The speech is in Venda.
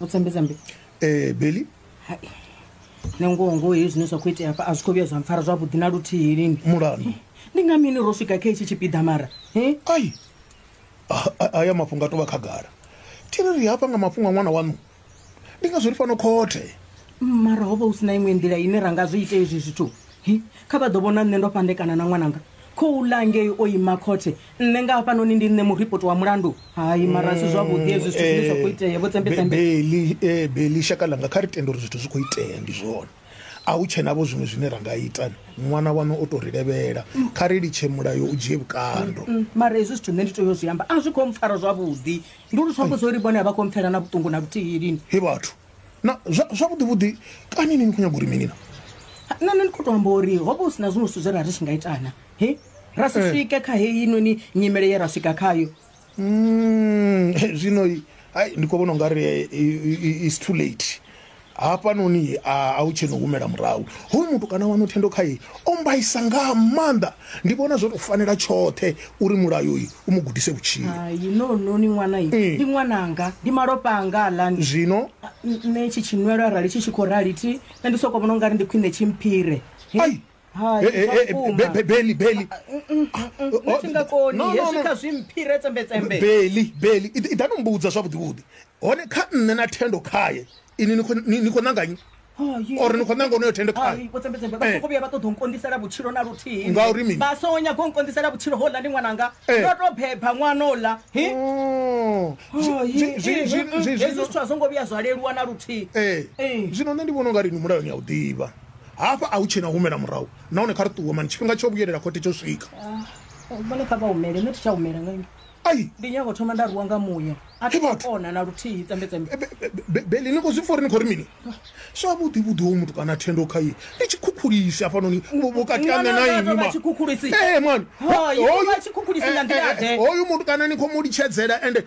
utsambe tsambe ee beli hai nangoho ngoho hei zwine zwa khou itea hafha a zwi khou vhuya zwa mpfara zwavhuḓi na luthihi lini mulandu ndi nga mini ro swika kha itshi tshipiḓa mara he ai A- a- aya mafhungo a tovha khagala thi ri ri hafha nga mafhungo a ṅwana waṋu ndi ngazwo ri fano khothe mara ho vha hu si na iṅwe nḓila ine ra nga zwi ite izwi zwithu Hi, kha vha ḓo vhona nṋe ndo fhandekana na ṅwananga khou ḽa ngei o ima khothe nṋe nga hafhanoni ndi nṋe muripoti wa mulandu hai mara si zwavhuḓi hezwi zwithu zwine zwa khou itea vho tsembetsembe beli eh, beli shaka langa kha ri tende uri zwithu zwi khou itea ndi zwone a hu tshenavho zwiṅwe zwine ra nga ita ni ṅwana wanu o tou ri levhela kha ri litshe mulayo u dzhie vhukando Mm, mara hezwi zwithu nṋe ndi tea u zwi amba a zwi khou mpfara zwavhuḓi ndi uri zwi amba zwo ri vhone a vha khou mpfela na vhuṱungu na vhuthihi lini he vhathu na zwa- zwavhuḓi vhuḓi kani ni ni khou nyaga uri mini na nṋe nṋe ndi khou tou amba uri ho vha hu si na zwiṅwe zwithu zwe ra ri tshi nga itana he ra si Eh. swike kha heinoni nyimele ye ra swika khayo Mm, zwino i- ai, ndi khou vhona ungari eh, i- i- i- its too late hafhanoni a a u tsheno humela murahu hoyu mutukana wanu thendo khaye o mbaisa nga maanḓa ndi vhona zwo tou fanela tshoṱhe uri mulayo uyu u mu gudise vhutshilo hai no no ni ṅwana yi Mm. ndi ṅwananga ndi malofha anga alani zwino nṋe tshi tshinwelo arali tshi tshi khou rali thi nṋe ndi soko vhona ungari ndi khwine tshi mphire He, Ai. Hai, Eh, eh, zwa eh, vhukuma. Be- Be- Beli, Beli. nṋe thi nga koni No, no, hezwi no. kha zwi mphire tsembetsembe beli beli i i ḓa no mbudza zwavhuḓivhuḓi hone kha nṋe na thendo khaye ini ni khou- ni ni khou ṋanganyi or ni khou ṋanga onoyo thendo khaye tsembetsembe Eh. vha soko vhuya vha ṱoḓa u nkondisela vhutshilo na luthihi Ngauri mini? vha songo nyaga u nkondisela vhutshilo hola ndi ṅwananga Eh. ndo to beba ṅwana ola hi Oh. Zwi- zwi- zwi- zwi- zwi- hezwi zwino- zwithu a zwo ngo vhuya zwa leluwa na luthihi Eh. Eh. zwino nṋe ndi vhona unga ri ni mulayoni ya u ḓivha Hafha a hu tshena u humela murahu nahone kha ri ṱuwe mani tshifhinga tsho vhuyelela khothe tsho swika. Ah, vhone kha vha humele nṋe thi tsha humela nga ini. Ai. Ndi nyago thoma nda ruwa nga muya. A thi kona na luthihi tsembe tsembe. Beli ni khou zwi pfa uri ni khou ri mini? Sa vhuḓi vhuḓi ho muthu kana thendo kha ye. Ndi tshikhukhulisi hafhanoni vhukati ha nṋe na inwi mani. Tshikhukhulisi. Eh mani. Hoyu vha tshikhukhulisi nga nḓila ḓe. Hoyu muthu kana ni khou mu litshedzela ende